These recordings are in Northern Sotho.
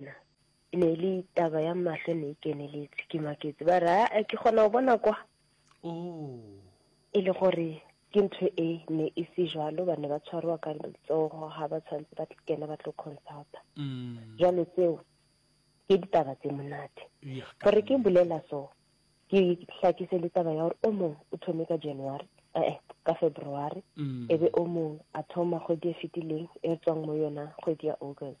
Na. E ne e le taba ya mahlo ne e keneletse ke maketse ba re a ke kgona go bona kwa oh. e le gore ke ntho e ne e se jalo ba ne ba tshwarwa ka letsogo ga ba tshwanetse ba kena ba tlo consulta mm. jalo tseo ke ditaba tse monate gore ke bolela so ke tlhakise le taba ya gore o mongwe o thome ka january ee ka february mm. e be o mongwe a thoma kgwedi e fetileng e tswang mo yona kgwedi ya august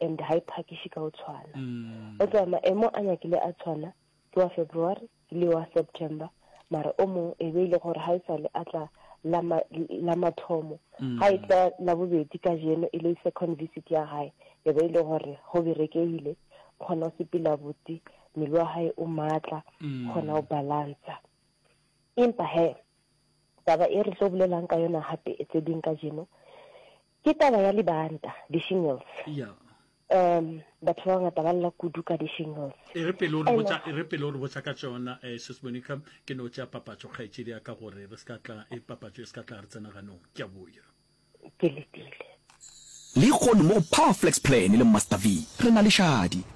and ha e phakiše ka o tshwana mm. o tswa maemo a nyakile a tshwana ke wa february le wa september mara o mongwe e be ile gore ga e sale a tla la mathomo mm. ga e tla la bobedi ka jeno e le second visit ya gae e be ile gore go berekegile kgona o sepela botse mmele wa gae o maatla mm. kgona o balansa empa he taba e re tlo bolelang ka yona gape e tse ding ka jeno Ke taba ya libanta, di-shingles. Ya. Um, batho ba bangata ba lla kudu ka di-shingles. E re pele o re botša, e re pele o re botša ka tšona, eh, Sis Monica, ke no tšea papatšo kgaetšedi ya ka gore re se ka tla, e papatšo e se ka tla re tsena ganong. Ke a boya. Ke letile. Lehono mo go Power Flex Plan le Master V, re na le šadi.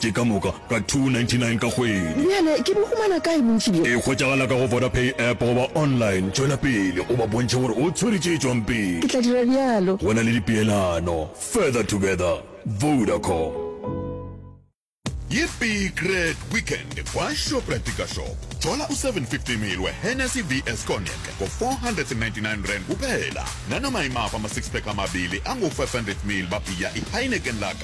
Ke ka moka ka 299 ka kgwedi. Bjale ke bo humana kae bontši bjo? E hwetšagala ka go Vodapay app goba online. Tšwela pele o ba bontšhe gore o tshwere tše tšwang pele. Ke tla dira bjalo. Go na le dipeelano. Further together. Vodacom. Yippee Great Weekend kwa Shoprite Dikashop. Thola u 750 ml we Hennessy VS Cognac ngo 499 rand kuphela, nanoma imaphi ama six pack amabili angu 500 ml ba bhiya i Heineken Lager.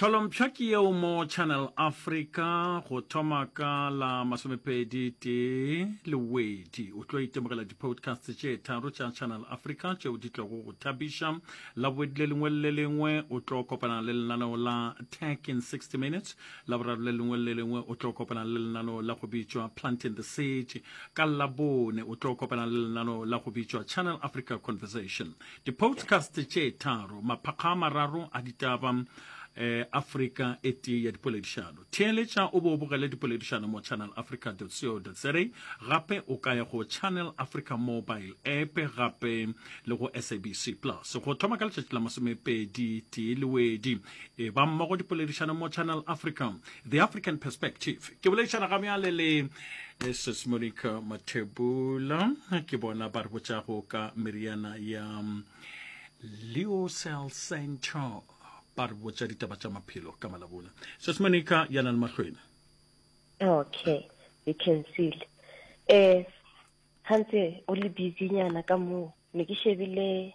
Tlholompšha ke yeo mo Channel Africa go thoma ka la masomepedi tee lewedi. O tlo itemogela di-podcasts tše tharo tša Channel Africa tšeo di tlogo go thabiša. La bobedi le lengwe le lengwe o tlo kopana le lenaneo la Tech in 60 Minutes. La boraro le lengwe le lengwe o tlo kopana le lenaneo la go bitšwa Planting the Seed. Ka labone o tlo kopana le lenaneo la go bitšwa Channel Africa Conversation. Dipodcast tše tharo, maphakga a mararo a ditaba, um Afrika e tee ya dipoledišano. Theeletša o be o bogele dipoledišano mo channelafrica.co.za. Gape o ka ya go Channel Africa mobile app gape le go SABC Plus. Go thoma ka letšatši la masomepedi tee lewedi. e ba mmogo dipoledišano mo channel africa the african perspective ke boledišana ga bjale le eh, sis monica mathebula ke bona ba re botšago ka meriana ya mm, leo cell center ba re botša ditaba tša maphelo ka malabona sis monica ya na le mahlwene okay you can see eh gantse o le busy nyana ka moo ne ke shebile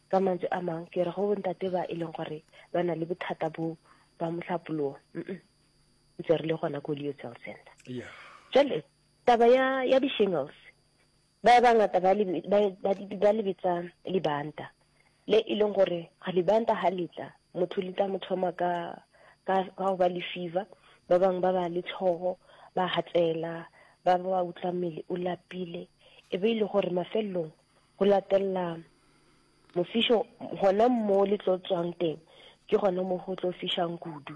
Ka mantšu a mang, ke re go bontate ba e leng gore ba na le bothata bo ba mohlapologo, mm ntse re le gona ko Leo Cell Center. Yeah. Jale, taba ya, ya di-shingles, ba bangata ba, li, ba, ba, ba le bitsa libanta, le e leng gore ga libanta ha le tla, motho le tla mo thoma ka, ka, ka go ba le fever, ba bangwe ba ba le tlhogo, ba hatsela, ba ba utlwa mmele o lapile, e be e le gore mafelelong Go latelela mofišo, gona mo le tlo tswang teng ke gona mo go tlo fišang kudu.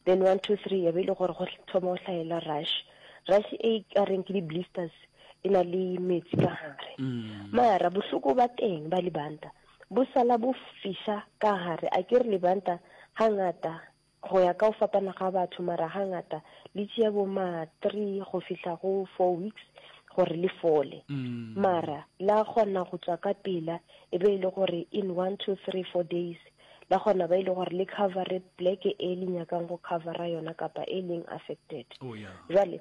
Then one two three ya be e le gore go thoma go hlaela rush rush e ka reng ke di-blisters e na le metsi ka gare mm. mara bohloko ba teng ba libanta bo sala bo fiša ka gare a ke re libanta ga ngata Go ya ka go fapana ga batho, mara hangata le tšea bo ma three go fihla go four weeks gore le fole. Mara la kgona go tswa ka pela e be e le gore in one, two, three, four days la kgona ba e le gore le covere pleke e le nyakang go covera yona kapa e leng affected. Jwale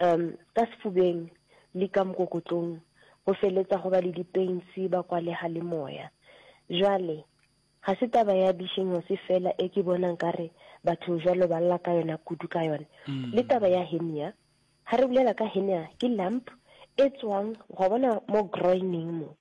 um ka sefubeng le ka mokokotlong go feletsa go ba le dipeinsi ba kwalega le moya jwale ga se taba ya dishengose fela e ke bona nkare batho jwalo ba lla ka yona kudu ka yone mm. le taba ya henia ga re bulela ka henia ke lamp e tswang go bona mo groining mo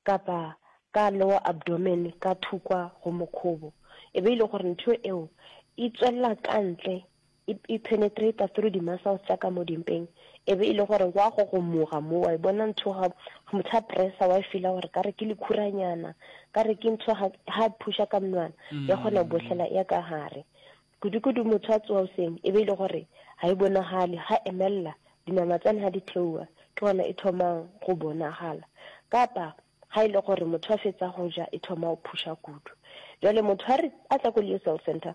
kapa ka lower abdomen ka thukwa go mokhobo e be ile gore ntho eo e tswelela ka ntle e, e penetrata through di-muscles tša ka mo dimpeng, e be e le gore wa go gomoga mo, wa e bona ntho ga motho a pressa, wa e fila gore ka re ke lekhuranyana, ka re ke ntho ga e phusha ka mnwana, ya kgona go bohlela ya ka gare. Kudu-kudu motho a tsoa oseng, e be e le gore ga e bonagale, ga emelela, dinama tsane ga di theoa, ke gona e thomang go bonagala. Kapa ga e le gore motho a fetsa go ja, e thoma go phusha kudu. Jwale motho a re a tla ko Leo Cell Center,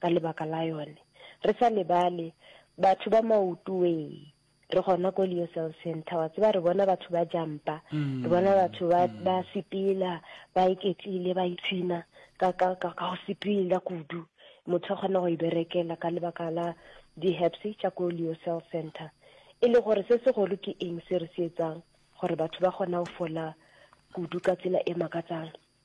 ka lebaka la yone. Re sa lebale, batho ba maoto wee re gona ko leo cell center wa tseba re bona batho ba jampa mm. re bona batho ba mm. ba sepela ba iketlile ba itshina ka ka ka go sepela kudu motho a kgona go iberekela ka lebaka la di-herbs tša ko leo cell center e le gore se segolo ke eng se re se etsang gore batho ba kgona go fola kudu ka tsela e makatsang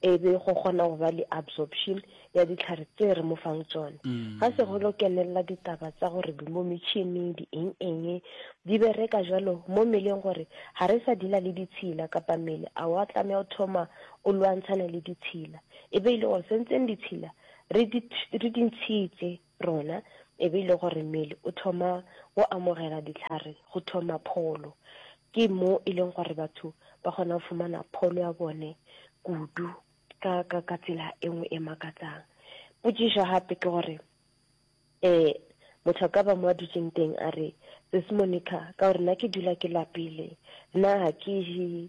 e be go kgona go ba le absorption ya dihlare tse re mo fang tsone. Ga se go lo kenelela ditaba tsa gore di mo metšhini, di eng-eng, di bereka jalo mo mmeleng gore ga re sa dila le ditshila kapa mmele a wa tlameha o thoma o lwantshane le ditshila. E be e le gore se ntseng ditshila re di, re di ntshitse. rona e be e le gore mmele o thoma go amogela dihlare go thoma pholo ke mo e leng gore batho ba kgona go fumana pholo ya bone kudu ka ka ka tsela e nngwe e makatsang potšišo gape ke gore eh motho a ka ba mo a dutseng teng a re sis monica ka gore nna ke dula ke lapile nna ga ke je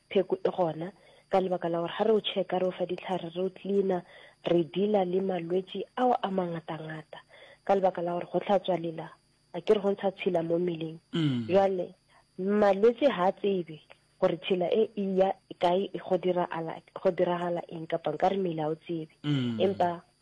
Pheko e gona, ka lebaka la gore ga re o checka, re o fa ditlhare, re o cleaner, re dealer le malwetši ao a mangatangata, ka lebaka la gore go hlatswa lela, a ke re go ntsha tshila mo mmeleng. Jwale malwetši ga a tsebe gore tshila e e ya kae, go diragala eng, kapa nka re mmele ga o tsebe. Empa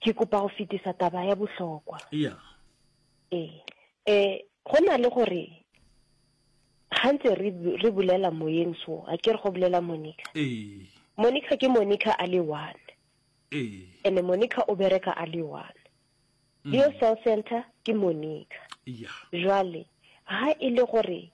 ke kopa go fetisa taba ya bohlokwa yeah. ee um go na le gore ga ntse re bolela moyeng so a ke re go bolela monica ee. monica ke monica a le one ee. and monica o bereka a le one mm. leo cell center ke monica jale ga e le gore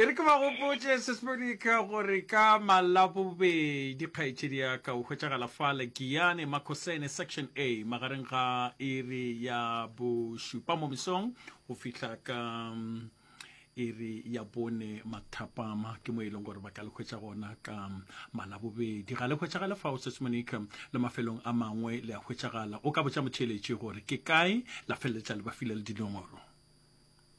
e re ke ba gopotse sesmonika gore ka malabobedi kgaetšedi ya ka o hwetšagala fa legiyane makosene section a magareng ga iri ya bošupa mo mesong go fihla ka mm, iri ya bone mathapama ke mo e leng gore ba ka le hwetša gona ka mm, malabobedi ga le hwetšagale fao sesmonika le mafelong a mangwe le a hwetšagala o ka botša motheeletši gore ke kae la feleletša le ba file le dinomoro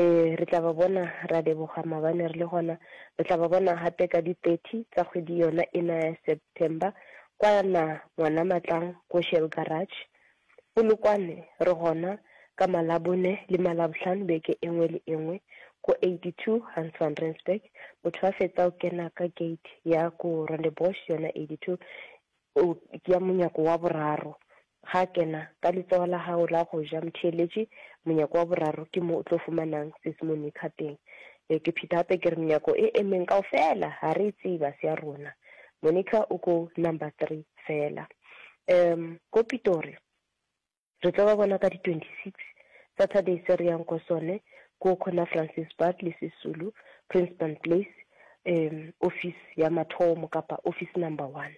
Ee, re tla ba bona. Ra leboga, maabane re le gona. Re tla ba bona gape ka di 30 tsa kgwedi yona ena ya September, kwana Ngwanamatlang ko Shell Garage. Polokwane re gona ka Malabone le Malabohlano beke e nngwe le e nngwe, ko 82 Hans Van Rensburg. Motho a fetsa go kena ka gate ya ko Rondebosch, yona 82, O tšea monyako wa boraro. Ga a kena ka letsogo la gago la go ja, motheeletši, monyako wa boraro ke mo o tlo fumanang sesmonica teng. Ee, ke pheta gape ke re, menyako e e meng kaofela ga re e tseba, se ya rona. Monica o ko number three fela. Um, ko Pitori, Re tlo ba bona ka di 26 Saturday se re yang ko sone ko khona Francis Bad le Sisulu Princeton Place um office ya mathomo kapa office number one.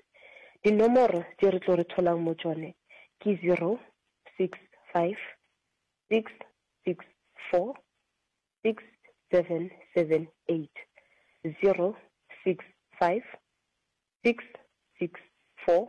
Dinomoro tše re tlo re tholang mo tšone ke 065 664 6778 065 664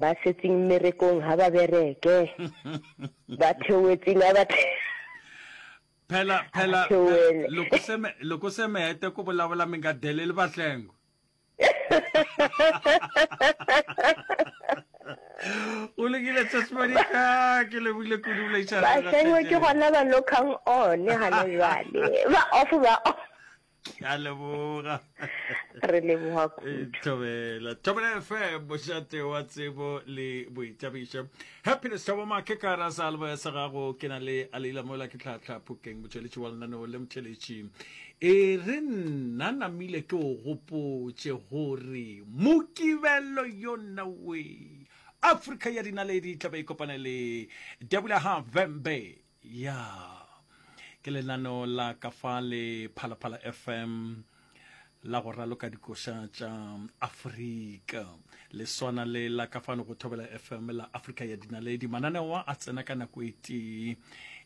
Ba setseng mmerekong ha ba bereke. Ba theoetseng ha ba the- Phela, phela, Athe phela. wele. Loko se me, loko se me hete ku vulavula mi nga deleli vahlengo. U lungile Sesi Monica, ke lebohile kudu bolaišana. Ba sengwe ke gona ba lokang one gane jwale. Ba off ba off. ke a leboga re leboga eh, thobela thobela fm mošate wa tsebo le boitabišo happiness thabo make ka ra sa albo ya sa gago ke na le a leila mola ke tlhatlha phokeng motšweletši wa lenaneo le motšweletši e re nna namile ke o gopotše gore mokibelo yo nna we afrika ya dinaledi tlabe e kopane le debula ha vembe Ya, ke lenaneo la ka fa le Phalaphala FM la go raloka dikoša tša Afrika le swana le la ka fano go thobela FM la Afrika ya dinaledi. Mananeo a tsena ka nako e tee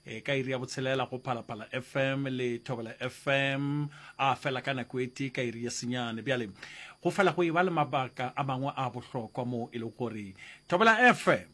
e ka iri ya botshelela go phalaphala fm le thobela fm a fela ka nako e tee ka iri ya senyane bjale go fela go e ba le mabaka a mangwe a bohlokwa moo e lego gore thobela fm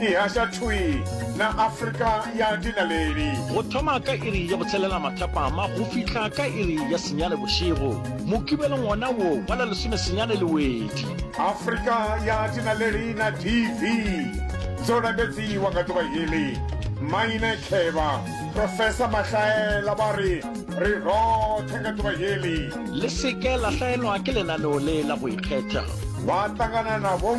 e haša thwi na Afrika ya dinaledi. Go thoma ka iri ya botshelela mathapama go fihla ka iri ya senyane bošego, mokibelong wona wo wa la lesome senyane le wedi. Afrika ya dinaledi na DV tso lapetsi wa ka toba yeli Maine Kheba, Professor Mahlaela ba re re rothe ka toba yeli. Le seke la hlaelwa ke lenaneo le la go ikgetha. Ba tlangana na bo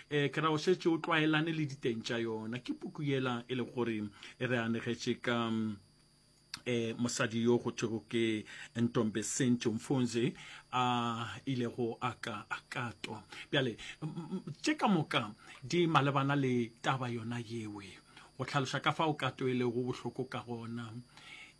Eh, ke ra o šetše o tlwaelane le diteng tša yona ke puku yela e le gore e re anegetše ka eh mosadi yo go thwego ke ntombe sentše mfonze a ilego a ka a katwa bjale tše ka moka di malebana le taba yona yewe go tlhaloša ka fa o kato e lego bohloko ka gona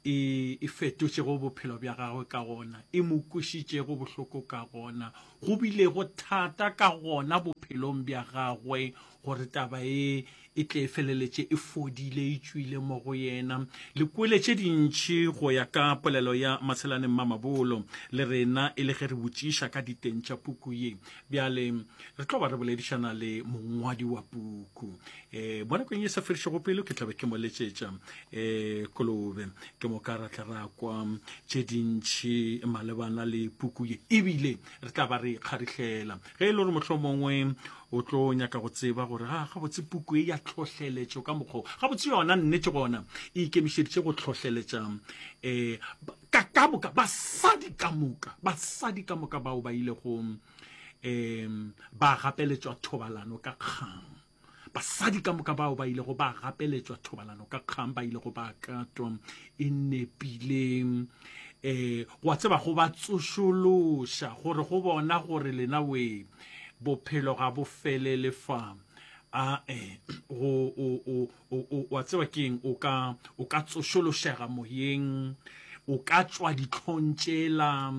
e, e fetotšego bophelo bja gagwe ka gona e mo kwešišitšego bohloko ka gona go bilego thata ka gona bophelong bja gagwe gore taba e e tle e feleletše e fodile e tšwile mo go yena le kwele tše dintši go ya ka polelo ya matshelane mmamabolo le rena e le ge re botšiša ka diteng tša puku ye bjale re tlo ba re boledišana le mongwadi wa puku eh mo nakong e sa fedišego pelo ke tlabe ke mo letšetša eh kolobe ke mo ka ra tla ra kwa tše dintšhi malebana le puku ye ebile re tla ba re kgarihlela ge e le gore motlho mongwe o tlo nyaka go tseba gore ga gabotse puku e ya tlhohleletšo ka mokgwa gabotse yona nnete gona e ikemišeditše go tlhohleletša um eh, ka ka moka basadi ka moka basadi ka moka bao ba ilego um ba gapeletšwa thobalano ka kgang Basadi ka moka bao ba ilego ba gapeletšwa thobalano ka kgang ba ilego ba katwa e nepileng eh wa tseba go ba tsošološa gore go bona gore lena we bophelo ga bo felele fa a eh go o o o wa tseba keng o ka o ka tsošološega moyeng o ka tswa ditlhong tšela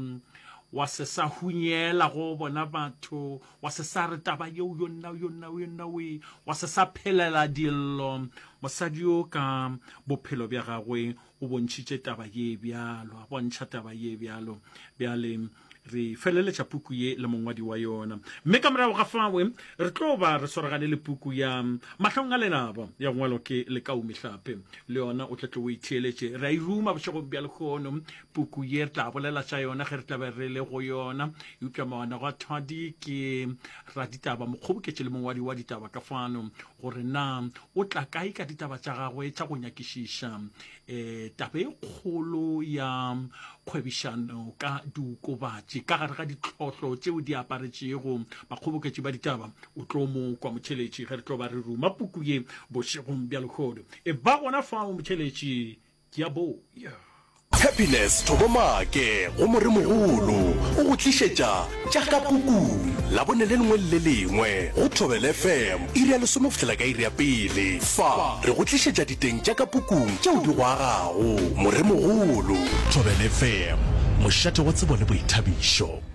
wa se sa hunyela go bona batho Wa se sa re taba yeo yo nna yo nna yo nna we wa se sa phelela dillo mosadi yo ka bophelo bja gagwe o bontšhitše taba ye bjalo a bontšha taba ye bjalo bjale re feleletša puku ye le mongwadi wa yona mme ka morago ga fawe re tlo ba re swaragane le puku ya mahlong a lelaba ya ngwalo ke lekaumi hlape le yona o tletlo o itheeletše re a e ruma bošegong bja lekgono Puku ye re tla bolela tša yona ge re tla be re le go yona. Eupša mawana go a thwadi ke raditaba mokgoboketši le mongwadi wa ditaba ka fano gore na o tla kae ka ditaba tša gagwe tša go nyakišiša um taba e kgolo ya kgwebišano ka diokobatši ka gare ga ditlhohlo tšeo di aparetšego bakgoboketši ba ditaba o tlo mo kwa motšheletši ge re tlo ba re ruma puku ye bošegong bja lehodu e ba gona fao motšheletši Ke a bo ya. Tshepiless Thobomake go Moremogolo o go tlišetša Tša ka Pukung Labone le lengwe le le lengwe go Thobela FM iri ya lesome go fihlela ka iri ya pele. Fa re go tlišetša diteng tša ka pukung tšeo di go agago. Moremogolo. Thobela FM, mošate wa tsebo le boithabišo.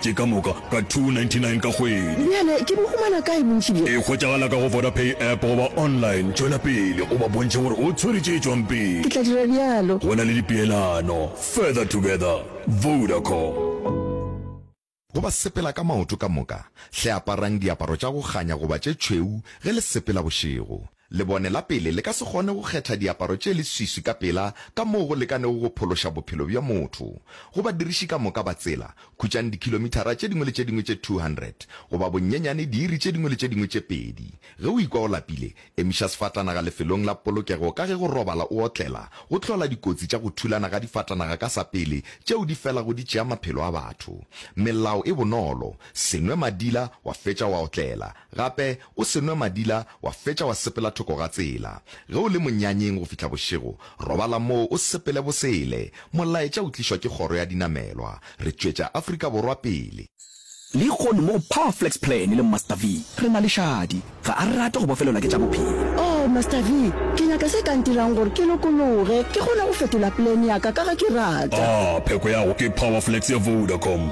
tše ka moka ka 299 ka kgwedi. Bjale ke bo humana kae bontši bjo? E hwetšagala ka go Vodapay app goba online. Tšwela pele o ba bontšhe gore o tshwere tše tšwang pele. Ke tla dira bjalo. Go na le dipeelano, Further Together, Vodacom. Go ba sepela ka maoto ka moka, hle aparang diaparo tša go kganya goba tše tšhweu ge le sepela bošego. Lebone la pele le ka se kgone go kgetha diaparo tše leswiswi ka pela ka moo go lekanego go phološa bophelo bja motho. Go badiriši ka moka ba tsela, khutšang dikhilomithara tše dingwe le tše dingwe tše 200, goba bonnyenyane diiri tše dingwe le tše dingwe tše pedi. Ge o ikwa o lapile, emiša sefatanaga lefelong la polokego ka ge go robala o otlela go hlola dikotsi tša go thulana ga difatanaga ka sa pele tšeo di felago di tšea maphelo a batho. Melao e bonolo, se nwe madila wa fetša wa otlela. Gape o se nwe madila wa fetša wa sepela thoko ga tsela. Ge o le monyanyeng go fihla bošego, robala moo o sepele bosele. Molaetša o tlišwa ke kgoro ya dinamelwa. Re tšwetša Afrika Borwa pele. Lehono mo go Power Flex Plan le Master V, re na le šadi. Ga a rate go bofelelwa ke tša bophelo. Oh, Master V, ke nyaka se ka ntirang gore ke lokologe, ke kgone go fetola plan ya ka ka ge ke rata. Ah, pheko ya go ke Power Flex ya Vodacom.